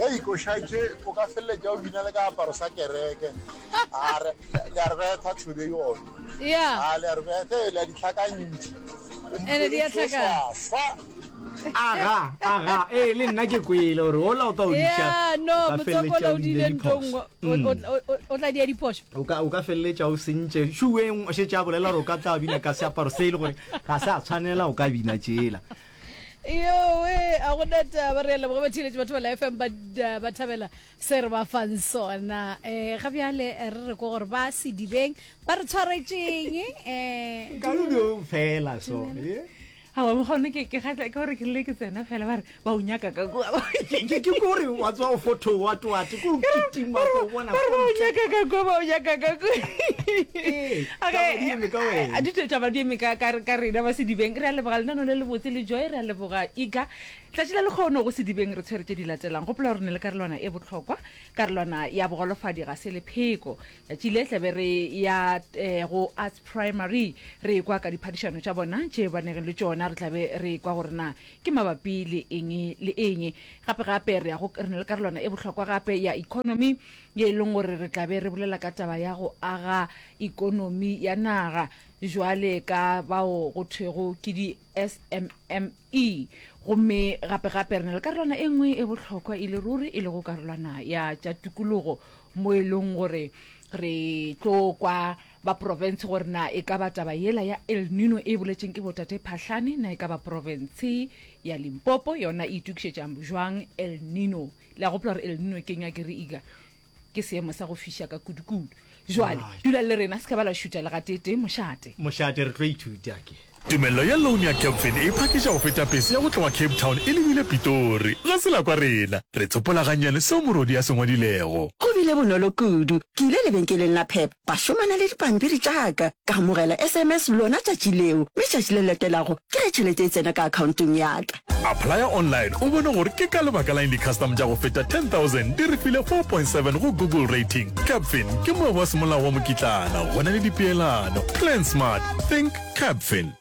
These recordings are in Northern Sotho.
Hei košatše o ka feleletša o bina le ka aparo sa kereke a re le a re betha tshwebe yone Yeah. a le a re betha le a ditlhakantši Ene di a tlhakana. fa aga aga ee le nna ke kwele gore ola o tla o diša Yeah, no, ka motswako feleletša o o laodile diile ntho diphoso. nngwe. O- Mm. o- o- o- o tla dia diphoso. o ka o ka feleletša o sentše šueng o šetše a bolela gore o ka tla bina ka seaparo se e le gore ga se a tshwanela o ka bina tšela yowe a go na taba re a leboga batheeletši batho ba la fm ba da- ba thabela se re ba fang sona um ga bjale eh, re re ko gore ba sedibeng ba re tshwaretšeng um kaludo fela so eh? awa gone ke ke kgatla ke gore ke le ke tsena fela ba re ba o nyaka ka kua Ke- ke ke kore wa tswa o fotho wa twate ditaba di eme ka rena ba sedibeng re a leboga lenano le lebotse le joy re a leboga iga tlatši la lekgono go sedibeng re tshwere tse di latelang gopola gore ne le karolwana e bohlokwa karolwana ya bogolofadi ga se lepheko tšatši le tlabe re ya eh, go arts primary re kwa ka diphadišano tša bona tše banegeng le tšona re tlabe re kwa gore na Ke mabapi le eng le eng? Gape-gape re a go re na le karolwana e bohlokwa gape ya ekonomi ye e leng gore re tla be re bolela ka taba ya go aga ekonomi ya naga bjale ka bao go thwego ke di-SMME. Gomme gape-gape re na le karolwana e nngwe e bohlokwa e le ruri e lego karolwana ya tša tukologo mo e leng gore re tlo kwa Ba profense gore na e ka ba taba yela ya El Nino e boletšeng ke bo Tate Phahlane na e ka ba profense ya Limpopo yona e itokišetša bjwang El Nino. Le a gopola gore El Nino ke nywa ke re ika ke seemo sa go fiša ka kudukudu. Jwale Right. dula le rena, se ka ba la šuta le gatee tee mošate. Mošate re tlo ithuta ke. Tumello ya loan ya Capfin e phakiša go feta pese ya go tloga Cape Town e lebile Pitori. Ga se la kwa rena. Re tsopola gannyane seo morwedi a se ngwadilego. Go bile bonolo kudu. Ke ile lebenkeleng la Pep, ba šomana le dipampiri tša ka. Ka amogela SMS lona tšatši leo, mme tšatši le latelago ke ge tšhelete e tsena ka akhaontong ya ka. Applya online o bone gore ke ka lebaka la'ng di-custom tša go feta 10,000 di re file 4.7 go Google Rating. Capfin ke moabi wa semolao wa mokitlana, go na le dipeelano. Plan smart. Think. Capfin.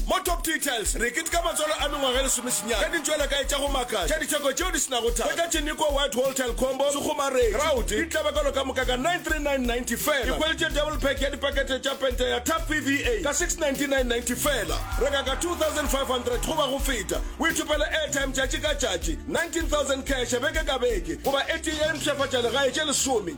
Mo Top Details re ketika matswalo a mengwaga e lesomesenyane ka ditšwelakae tša go makatša tša ditheko tšeo di se nago thata. Hwetša Tšiniko White Hall Tile Combo, Sekgomareng, Kraut, di tlabakalo ka moka ka 939.90 fela. Ikhwelitše Double Pack ya dipakete tša pente ya Tap PVA ka 699.90 fela. Reka ka 2500 goba go feta, o ithopele airtime tšatši ka tšatši, 19000 cash beke ka beke, goba e tee ya dimpshafatšalegae tše lesome.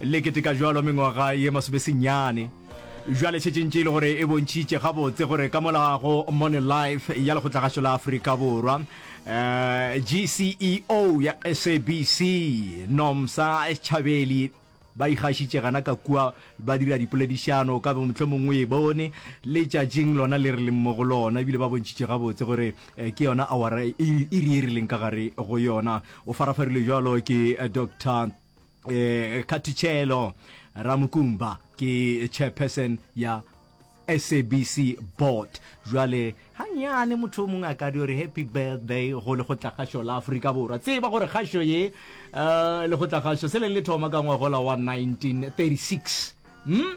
Le keteka bjalo mengwaga ye masomesenyane bjale, šetše ntše e le gore e bontšhitše gabotse gore ka mola go Money Life ya Lekgotlagašo la Afrika Borwa, GCEO ya SABC, Nomsa Schabeli ba ikgašitše gana ka kua ba dira dipoledišano ka mohlomong o e bone letšatšing lona le re leng mo go lona, ebile ba bontšhitše gabotse gore ke yona awara iri e rileng ka gare go yona. O farafarilwe bjalo ke Dr. eh, khathichelo ramukumba ke chairperson ya sabc board jwale ganyane motho o mongwe a ka di gore happy birthday go lekgotlakgašo la aforika borwa tseba gore kgašo ye um lekgotlakgašo se leng le thoma ka ngwagola wa 1936 mm?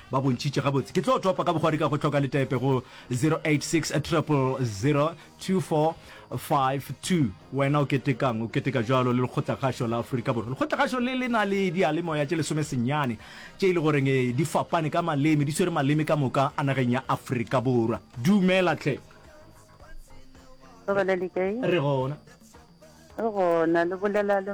ba bontšhitše gabotse. Ke tlo topa ka bogwari ka go hloka letepe go 0860002452. Wena o ketekang? O keteka bjalo le Lekgotlakgašo la Afrika Borwa? Lekgotlakgašo le le na le diyalemoya tše lesomesenyane tše e le goreng di fapane ka maleme, di swere maleme ka moka a nageng ya Afrika Borwa. Dumela tlhe. Re gona. Re gona, le bolela le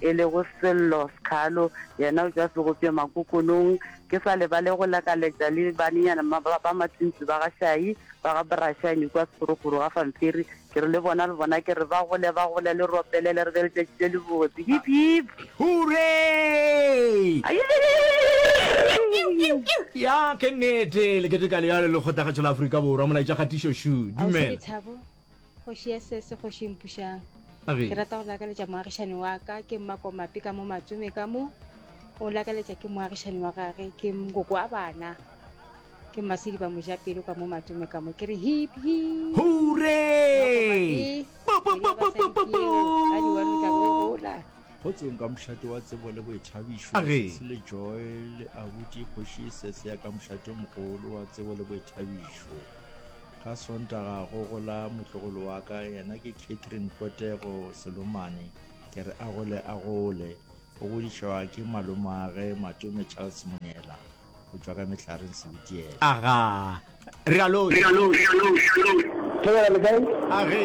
e lego Sello Skhalo, yena o tšwa Segopša Makokonong. Ke sa lebale go lakaletša le banenyana ba ba matšintši ba ga Shayi ba ga Brashany kua Sekgorokgoro ga Famphiri. Ke re le bona, le bona, ke re ba gole, ba gole, le ropelele, re be le tšatši le lebotse. Hip, hip! Hooray! Ya, ke nnete, le keteka leya le lekgotlagatšo la Afrika Borwa, Molaetša Kgatišo Shu. Dumela. Kgoši ya sese, kgoši mpušang. Ke rata go lakaletša moagišane wa ka ke mmakomape ka mo matsome ka mo o lakaletša ke moagišane wa gage ke mokoko wa bana ke masedi ba mojapelo ka mo matsome ka mo ke re hip hip hure go tsong ka mošate wa tsebo le boithabišo se le joy le abuti kgoši sese ya ka mošate mogolo wa tsebo le boithabišo Ka Sontaga go gola motlogolo wa ka, yena ke Catherine Potego Selomane. Ke re a gole a gole. O godišwa ke malomage Matome Charles Monyela go tšwa ka Mehlareng Sebitiele. Aga, re a lo. Thobela le kae? Age.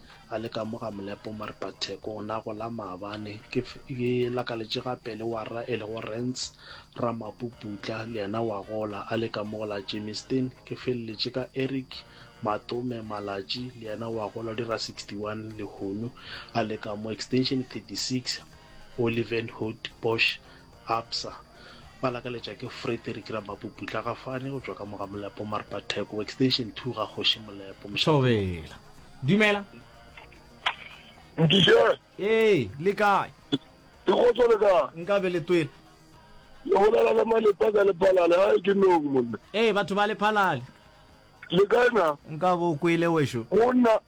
A le ka mo ga molepo Maripatheko o ne a gola maabane, ke e lakaletše gape le wa rra e lego Rance Ramapuputla le yena wa gola. A le ka mo go la Germiston, ke feleletše ka Eric Matome Malatji le yena wa gola o dira 61 lehono. A le ka mo Extension 36 Olivenhout Bosch Absa, ba lakaletša ke Frederick Ramapupu Tlhagafane go tšwa ka mo ga Molepo Marpa Theko, extension two ga Kgoši Molepo, Mošate. Thobela. Dumela. Nkiše. Ee, le kae? Ke kgotso le kae? Nka be le twela. Le bolela le Malepa ka Lephalale, hae ke nong monna. Ee, batho ba Lephalale. Le kae na? Nka bo o kwele wešo. Go nna,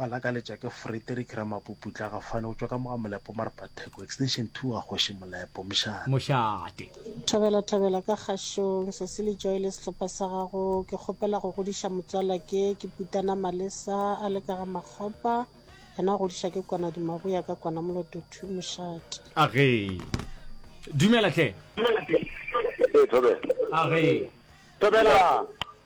Ba lakaletša ke Frederick Ramapuputla Gafane go tšwa ka mo ga Molepo Marpa Theko, extension two wa Kgoši Molepo, Mošate. Mošate. Thobela thobela ka kgašong Sesi le Joy le sehlopha sa gago ke kgopela go godiša motswala ke ke Putana Malesa a le ka ga Makgopa yena o godiša ke kwana Dimaboya ka kwana Moloto two Mošate. A re Dumela hle. Ee thobela. A re Thobela.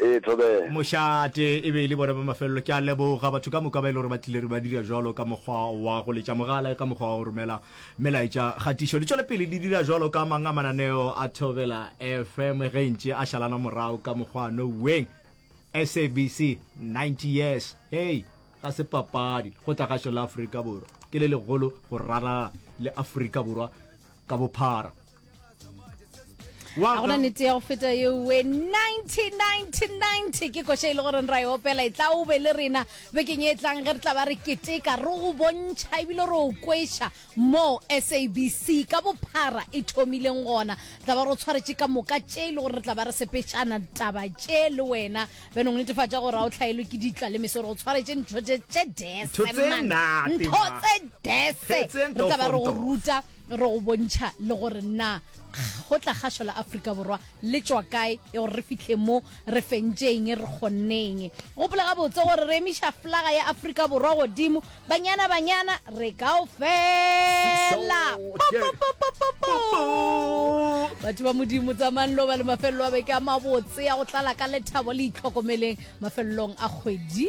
Ee, Thobela. Mošate, e be e le bona ba mafelelo. Ke a leboga batho ka moka ba e le gore ba tlile re ba dira jalo ka mokgwa wa go letša mogala, ka mokgwa wa go romela melaetša kgatišo. Le tšwele pele le dira jalo ka mang a mananeo a Thobela FM ge ntše a šalana morago ka mokgwa no weng. SABC 90 years, hei, ga se papadi go tla gašo la Afrika Borwa. Ke le legolo go ralala le Afrika Borwa ka bophara. ga gona nete ya go feta yeoe 1990 ke koša e le goreng ra e opela e tla o be le rena bekeng e tlang ge re tla ba re keteka re go bontšha ebile re o kweša mo sabc ka bophara e thomileng gona tla ba re o tshwaretše ka moka tše e le gore re tla ba re sepetšana taba tše le wena beno go netefatša gore ga o tlhaelwe ke ditla le meso re go tshwaretše ntho tše dese ntho tse dese re tla ba re go ruta Re go bontšha le gore na go tla kgašo la Afrika Borwa le tšwa kae e gore re fitlhe mo re fentšeng re kgonneng. Gopola gabotse gore re emiša flaga ya Afrika Borwa godimo banyana banyana re kao fela. Batho ba modimo tsamayang lo ba le mafelelo a beke a mabotse ya go tlala ka lethabo le itlhokomeleng mafelelong a kgwedi.